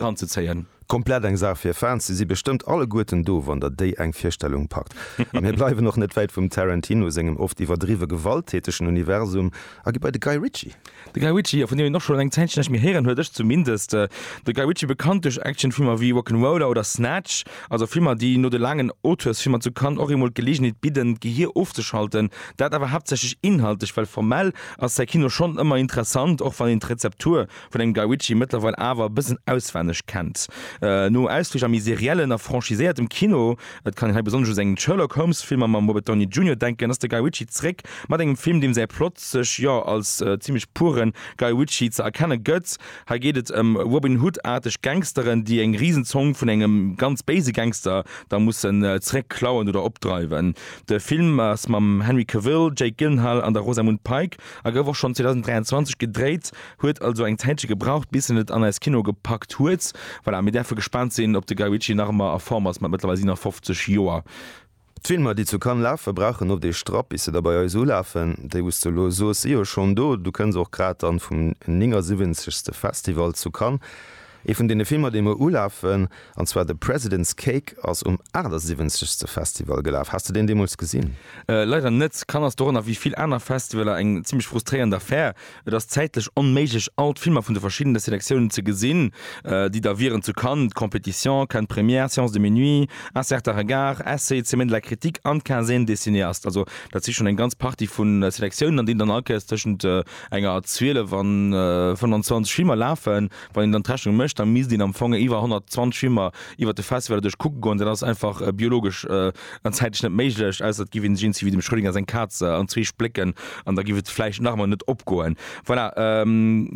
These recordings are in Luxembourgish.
anzezéien. Komplett eng Saach fir Fans. Se si bestëmmt alleguerten do, wann der déi eng Virstellung packt. A mir bleiwen och net wäit vum Tarantino sengem oft iwwerdriwwe gewalttätegen Universum a gi bei de Guy Ritchie. De Guy Ritchie, jo, vun deem een och schonn eng Zäitchen näischt méi héieren huet, ech zumindest. De Guy Ritchie, bekannt duerch Actionfilmer wéi Rock'n'Roller oder Snatch, also Filmer, déi no de laangen Auteursfilmer zu Cannes och eemol d'Geleegenheet bidden, d'Gehier ofzeschalten. Dat awer haaptsächlech inhaltlech, well formell ass säi Kino schonn ëmmer interessant, och wann een d'Rezeptur vun engem Guy Ritchie mëttlerweil awer e bëssen auswenneg kennt. No ausflich a méi seriellen a franchiséiertem Kino, et kann een hei besonnesch u seng Sherlock Holmes Filmer mam Robert Downey Junior denken, ass de Guy Ritchie zréck mat engem Film, deem säi Plot sech jo als zimmlech pure Guy Ritchie ze erkenne gëtt. Hei geet et ëm Robin Hood-aarteg Gangsteren, déi eng risen Zong vun engem ganz béise Gangster da mussen zréck klauen oder opdreiwen. De Film ass mam Henry Cavill, Jake Gyllenhaal an der Rosamund Pike a gouf och schonn 2023 gedréit. Huet also eng Zäitche gebraucht bis en et an eis Kino gepackt huet. Voilà, mir däerfe gespaant sinn op de Guy Ritchie nach ëmmer a Form ass mat mëttlerweil 57 Joer. D'Filmer déi zu Cannes lafe brauchen oft ee Strapp bis se da bei eis ulafen. Déi wou s de elo soos si jo schonn do. Du kënns och grad dann vum 79. Festival zu Cannes. Ee vun deene Filmer, déi muer ulafen, an zwar The President's Cake, ass um 78. Festival gelaf. Has de deen deemools gesinn? Leider net. Cannes ass dorënner wéi vill aner Festivaler eng zimmlech frustréierend Affär. Et ass zäitlech onméiglech, all d'Filmer vun de verschiddene Selektiounen ze gesinn, déi da wieren, zu Cannes, d'Compétition, Cannes Première, Séance de Minuit, Un certain regard, Essai, Semaine de la critique an d'Quinzaine des cinéastes. Also dat si schonn eng ganz Partie vu Selektiounen, an deenen dann all Kéiers tëschent enger a 12 an 25 Filmer lafen. Wann een dann d'Rechnung mécht, da misst een am Fong iwwer 120 Filmer iwwer de Festival duerch kucke goen. Dat ass einfach biologesch an zäitlech net méiglech, ausser et giff een sech eens ewéi dem Schrödinger seng Kaz an zwee splécken, an da giff et vläicht nach emol net opgoen. Voilà,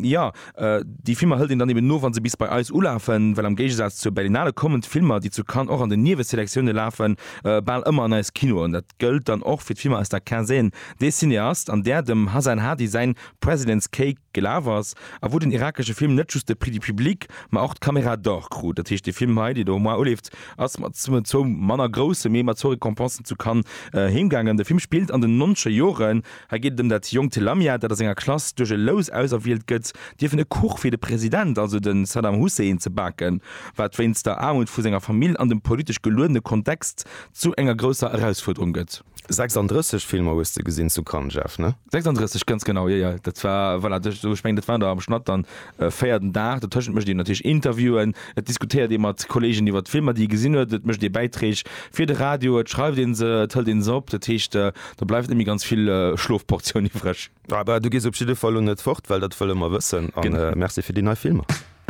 jo, déi Filmer hëlt een dann eben no, wa se bis bei eis ulafen, well am Géigesaz zur Berlinale kommen d'Filmer, déi zu Cannes och an den Nieweselektiounen lafen, bal ëmmer an eis Kinoen. Dat gëllt dann och fir d'Filmer aus der Quinzaine des cinéastes, an där dem Hasan Hadi säin President's Cake, Gelaf ass, a wou den irakesche Film net just de Prix du Public, ma och d'Caméra d'Or krut. Dat heescht, dee Film hei, deen do moar uleeft, ass mat zwou manner grousse, mee mat zwou Récompensen zu Cannes heemgaangen. De Film spillt an den nonche Joren. Hei geet et ëm dat jonkt Lamia, dat a senger Klass duerch e Lous auserwielt gëtt, dierfen e Kuch fir de President, also de Saddam Hussein, ze baken, wat wéinst der Aarmut vu senger Famill an dem politesch geluedene Kontext zu enger grousser Erausfuerderung gëtt. 36 Filmer hues de gesinn zu Cannes, Jeff, ne? 36, ganz genau, jo, jo. Dat war, voilà, do, ech mengen, dat waren der am Schnatt dann véier den Dag. Dotëschent mécht een natierlech Interviewen, et diskutéiert ee mat Kolleegen iwwer d'Filmer, déi ee gesinn huet, et mécht ee Bäiträg fir de Radio, et schreift een se, et hëlt een se op. Dat heescht, do bleift net méi ganz vill Schlofportioun iwwreg. Ah bah, du gees op jidde Fall elo net fort, well dat wëlle mer wëssen. A merci fir déi nei Filmer.